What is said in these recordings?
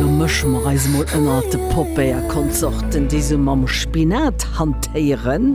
Lo mësche mer eis emol ënnert de Popéierkonsorten, déi se mam Spinat hantéieren.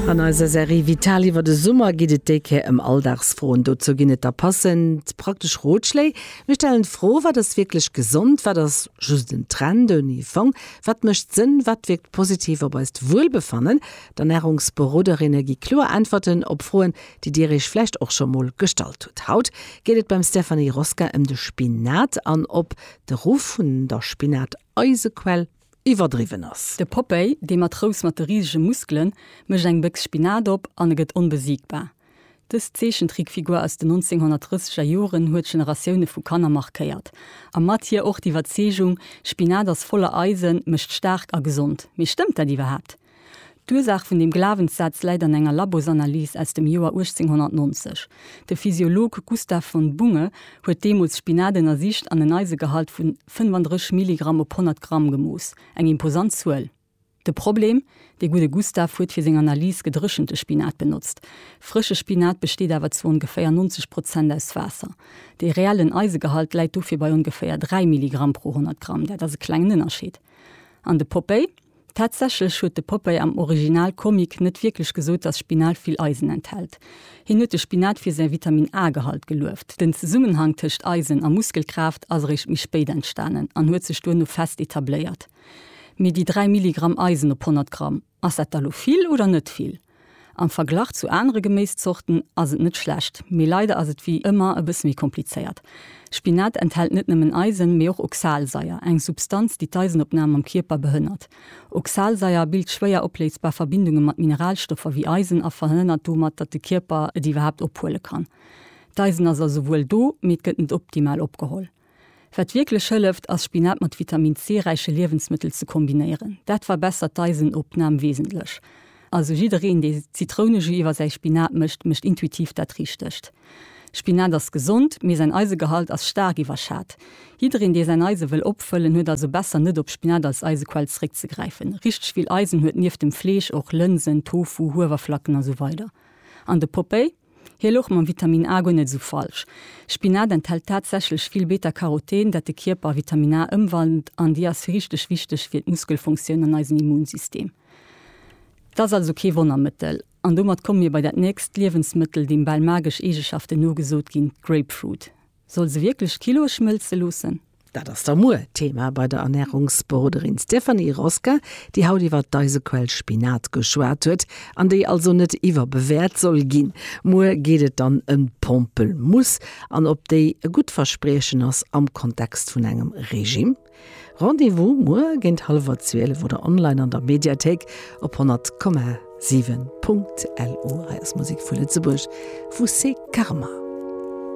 An eiser Serie Vital iwwer de Summer geet et déi Kéier ëm Alldagsfroen. Dozou ginn et da passend praktesch Rotschléi. Mir stellen d'Fro, Wat ass wierklech gesond? Wat ass just en Trend ouni Fong? Wat mécht Sënn? Wat wierkt positiv op eist Wuelbefannen? D'Ernärungsberoderinne gi kloer Äntwerten op Froen, déi Dir Iech vläicht och scho mol gestallt hutt. Haut geet et beim Stéphanie Rosca ëm de Spinat an ob de Ruff vun der Spinat-Eisequell iwwerdriwwen ass. De Popeye, dee Matrous mat de risege Muskelen, mécht eng Béchs Spinat op an e gëtt onbesiegbar. Dës Zeechentrickfigur aus den 1930 er Joren huet Generatioune vu Kanner markéiert a mat hir och d'Iwwerzeegung, Spinat ass voller Eisen, mécht staark a gesond. Mee stëmmt dat iwwerhaapt? D'Ursaach vun deem Glawenssaz läit an enger Labosanalys aus dem Joer 1890. De Physiolog Gustav von Bunge huet deemools Spinat ënnersicht an en Eisegehalt vu 35 Milligramm op 100 Gramm gemooss, eng imposant Zuel. De Problem, dee gudde Gustav huet fir seng Analys gedréchente Spinat benotzt. Frësche Spinat besteet awer zu ongeféier 90 Prozent aus Waasser. Dee reellen Eisegehalt läit dofir bei ongeféier 3 Milligramm pro 100 Gramm, dat ass e klengen Ënnerscheed. An de Popeye? Tatsächlech huet de Popeye am Original Comic net wierklech gesot, dass Spinat vill Eisen enthält. Hien huet de Spinat fir säi Vitamin-A-Gehalt gelueft. Den Zesummenhang tëscht Eisen a Muskelkraaft ass eréischt méi spéit entstanen an huet sech duerno fest etabléiert. Mee déi 3 Milligramm Eisen op 100 Gramm, ass dat da lo vill oder net vill? Am Verglach zu anere Geméiszorten ass et net schlecht, mee leider ass et wéi ëmmer e bësse méi komplizéiert. Spinat enthält net nëmmen Eisen, mee och Oxalsaier, eng Substanz, déi d'Eisenopnam am Kierper behënnert. Oxalsaier bilt schwéier opléisbar Verbindunge mat Mineralstoffer wéi Eisen a verhënnert domat, datt de Kierper et iwwerhaapt ophuele kann. D'Eisen ass also wuel do, mee et gëtt net optimal opgeholl. Wat wierklech hëlleft, ass Spinat mat Vitamin C räiche Liewensmëttel ze kombinéieren. Dat verbessert d'Eisenopnam wesentlech. Also jiddereen, dee Zitrounejus iwwer säi Spinat mécht, mécht intuitiv dat Richtegt. Spinat ass gesond, mee säin Eisegehalt ass staark iwwerschat. Jiddereen, dee säin Eise wëll opfëllen, huet also besser net op Spinat als Eisequell zeréckzegräifen. Richteg vill Eisen huet nieft dem Fleesch och Lënsen, Tofu, Huewerflacken a sou weider. An de Popeye? Hie louch mam Vitamin A guer net esou falsch. Spinat enthält tatsächlech vill Beta-Caroten, dat de Kierper a Vitamin A ëmwandelt an déi ass richteg wichteg fir d'Muskelfunktioun an eisen Immunsystem. Et ass also kee Wonnermëttel. An domat komme mir bei dat nächst Liewensmëttel, deem bal magesch Eegeschaften nogesot ginn, d'Grapefruit. Soll se wierklech Kilo schmëlze loossen? Dat ass da muer Thema bei der Ernärungsberoderin Stéphanie Rosca, déi haut iwwer d'Eisequell Spinat geschwat huet, an déi also net iwwerbewäert soll ginn. Muer geet et dann ëm d'Pompelmuuss an ob déi e gutt Verspriechen ass am Kontext vun engem Regime. Rendez-vous muer géint hallwer 12 oder online an der Mediathéik op 100,7. LU. Hei ass Musek vu Lëtzebuerg vu Seekarma.